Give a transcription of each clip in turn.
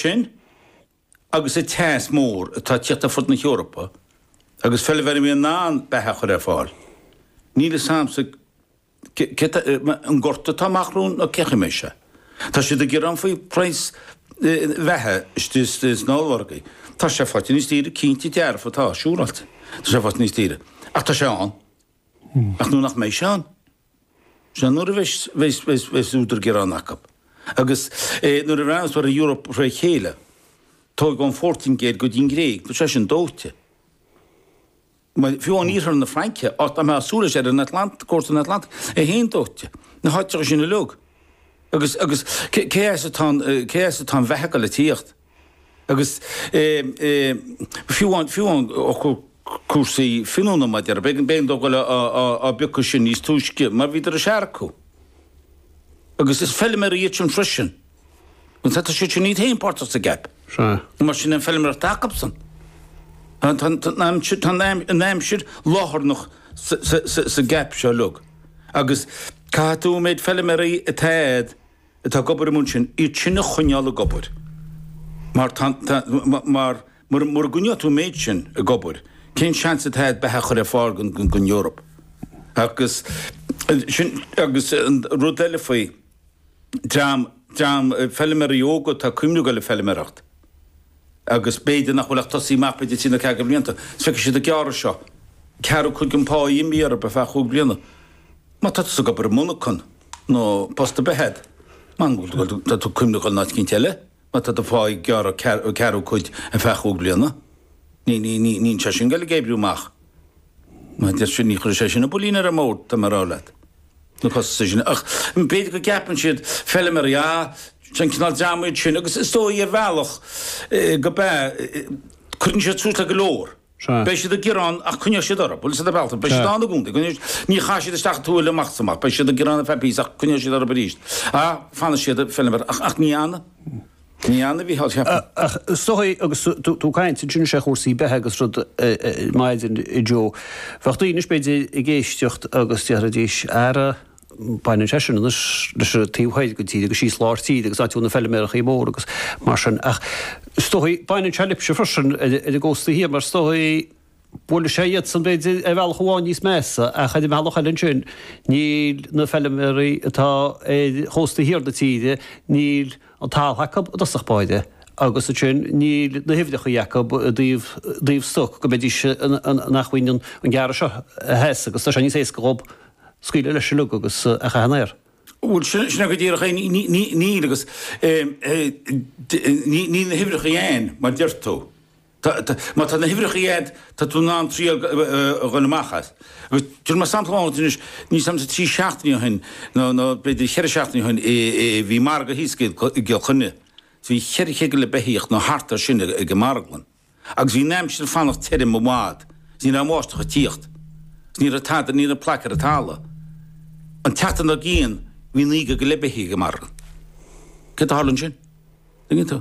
sin agus an teas mór atá ag teacht ar fud na hEorpa agus feilméaraí a mbíonn in ann beatha a chur ar fáil, níl 'fhios a'msa cé atá, an gorta atá amach romhainn nó cén chaoi a mbeidh sé. Tá siad ag gearán faoi phraghas bheatha istigh sna ollmhargaí. Tá sé faighte níos daoire, cinnte dearfa tá, siúráilte tá sé faighte níos daoire. Ach tá sé ann. Ach nó nach mbeidh sé ann. Sea, nuair a bheas údar gearáin acu, agus nuair a bhreathnós muid ar an Eoraip fré chéile, tóig ón Phortaingéil go dtí an Ghréig, tá sé sin dóite. Fiú amháin iarthar na Fraince, áit nach mbeadh súil leis ar an Atlantach, cósta an Atlantaigh, é féin dóite. Na háiteacha sin uilig. Agus cé as atá an bheatha ag goil a tíocht? Agus fiú amháin cúrsaí finiúna, mar a déarfá, b'éigean dóibh goil á bpiocadh sin níos túisce mar bhíodar ag seargadh. Agus is feilméaraí iad sin freisin. Agus tá siad sin iad féin páirteach sa gceap. Sea. Mar sin an feilméaracht atá acubsan. Tá an aimsir lárnach sa gceap seo uilig. Agus caithfidh tú an méid feilméaraí atá agat Tá ag obair amuigh ansin. Iad sin a choinneáil ag obair. Mar tá, tá, mar, mura, mura gcoinneoidh tú an méid sin ag obair, cén seans atá ag beatha chur ar fáil go, go, gon Eoraip? Agus sin, agus an rud eile faoi dream, dream feilméaraí óga, tá ag cuimhniú ag goil le feilméaracht. agus b'fhéidir nach bhfuil ach tosaithe amach b'fhéidir trí nó ceathair de bhlianta, is feicfidh siad an gearradh seo. Ceathrú cuid den pá imithe orthu ar feadh chúig bhliana. Má tá tusa ag obair i monarchan, nó post ar bith eile, mar go bhfuil tá tú ag cuimhniú ar an áit eicínt eile, má tá do phá ag gearradh ceathrú cuid ar feadh chúig bhliana, ní, ní, ní, níl sé sin ag goil ag oibriú amach. Má deir sin, ní chuirfidh sé sin an builín ar an mbord, tá mé a rá leat. na costais sin. Ach b'fhéidir go gceapann siad, feiliméaraí, ah, is é an cineál dream iad sin, agus is dóigh, ar bhealach, go bea, cuireann siad suas le go leor. Beidh siad ag gearán, ach coinneoidh siad orthu, bhuel, sin an bealach é, beidh siad ann i gcónaí, coinneoidh siad, ní chaithfidh siad isteach an tuáille amach is amach, beidh siad ag gearán ar feadh píosa ach coinneoidh siad orthu arís, ah, fanfaidh siad ag feiliméaracht, ach ní fhanfaidh. Ní fhanfaidh a bhí thall, cheapfainn. Ach is dóichí agus tú caint, ansin anois ar chúrsaí beatha agus rud ar maidin, a Joe. Bheadh daoine, b'fhéidir, ag éisteacht agus déarfaidís, Ara, baineann sé sin anois leis an taobh thoir den tír agus síos lár tíre agus áit a bhfuil na feilmeachaí móra agus mar sin. Ach is dóichí, baineann sé libhse freisin ar an gcósta thiar mar is dóichí. Buailfidh sé iadsan, b'fhéidir, ar bhealach amháin níos measa, ach ar an bhealach eile ansin, níl na feilméaraí atá ar chósta thiar na tíre, níl an talamh acu i dtosach báire, agus ansin níl na huimhreacha acu i dtaobh stoc go mbeidís in acmhainn an gearradh seo a sheasamh agus tá sé níos éasca dhób scaoileadh leis uilig agus é a chaitheamh san aer. Bhuel, sin é go díreach é, níl, agus níl na huimhreacha ann, mar a deir tú. Tá, tá. Má tá na huimhreacha agat, tá tú in ann triail a ghoil amach as. Agus cuir mar sampla ann anois, níl sé ach trí seachtainí ó shin, nó, nó b'fhéidir cheithre seachtainí ó shin, i, i, bhí margadh thíos i gCill Chainnigh. Bhí cheithre chéad go leith beithíoch nó thart air sin ag an marglann. Agus bhí an aimsir ag fanacht tirim i bhfad. Is ní raibh an bháisteach ag tíocht. Is ní raibh tada, ní raibh plaic ar an talamh. An tseachtain dár gcionn, bhí naoi gcéad go leith beithíoch ag an marglann. Céard a tharla ansin? Tuigeann tú?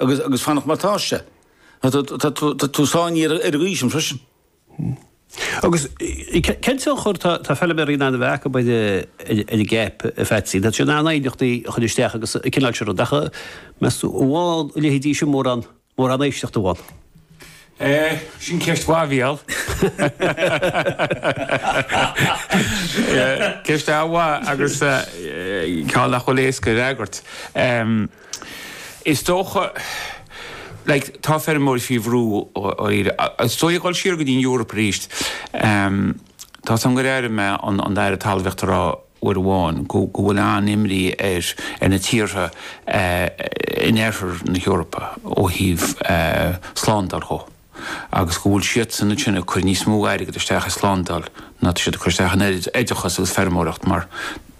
Agus ag fanacht mar atá sé. Tá tú tá tú sáinnithe ar ar an gcaoi sin freisin. Agus cén tionchar tá tá feilméaraí in ann a bheith acu ar ar an gCAP, a Pheatsaí? Tá siad in ann aighneachtaí a chur isteach agus an cineál sin rud ach meas tú an bhfaigheann a leithéidí sin mórán mórán éisteachta a mh'anam? Eh, sin ceist mhaith a bhí ann. Ceist mhaith agus eh, ceann nach bhfuil éasca a fhreagairt. Is dócha, like, tá feirmeoirí faoi bhrú ó Éire. Is dóigh ag dul siar go dtí an Eoraip arís. Tá a fhios agam gur airigh mé an an tAire Talmhaíochta a rá uair amháin go go bhfuil an-imní ar ar na tíortha in oirthear na hEorpa ó thaobh slándáil chomh. agus go bhfuil siadsan ansin ag cur níos mó airgead isteach i slándáil ná tá siad ag cur isteach in oideachas agus feirmeoireacht mar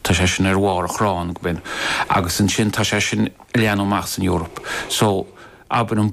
tá sé sin ar bharr an chrainn go binn agus ansin tá sé sin ag leathnú amach san Eoraip so abair an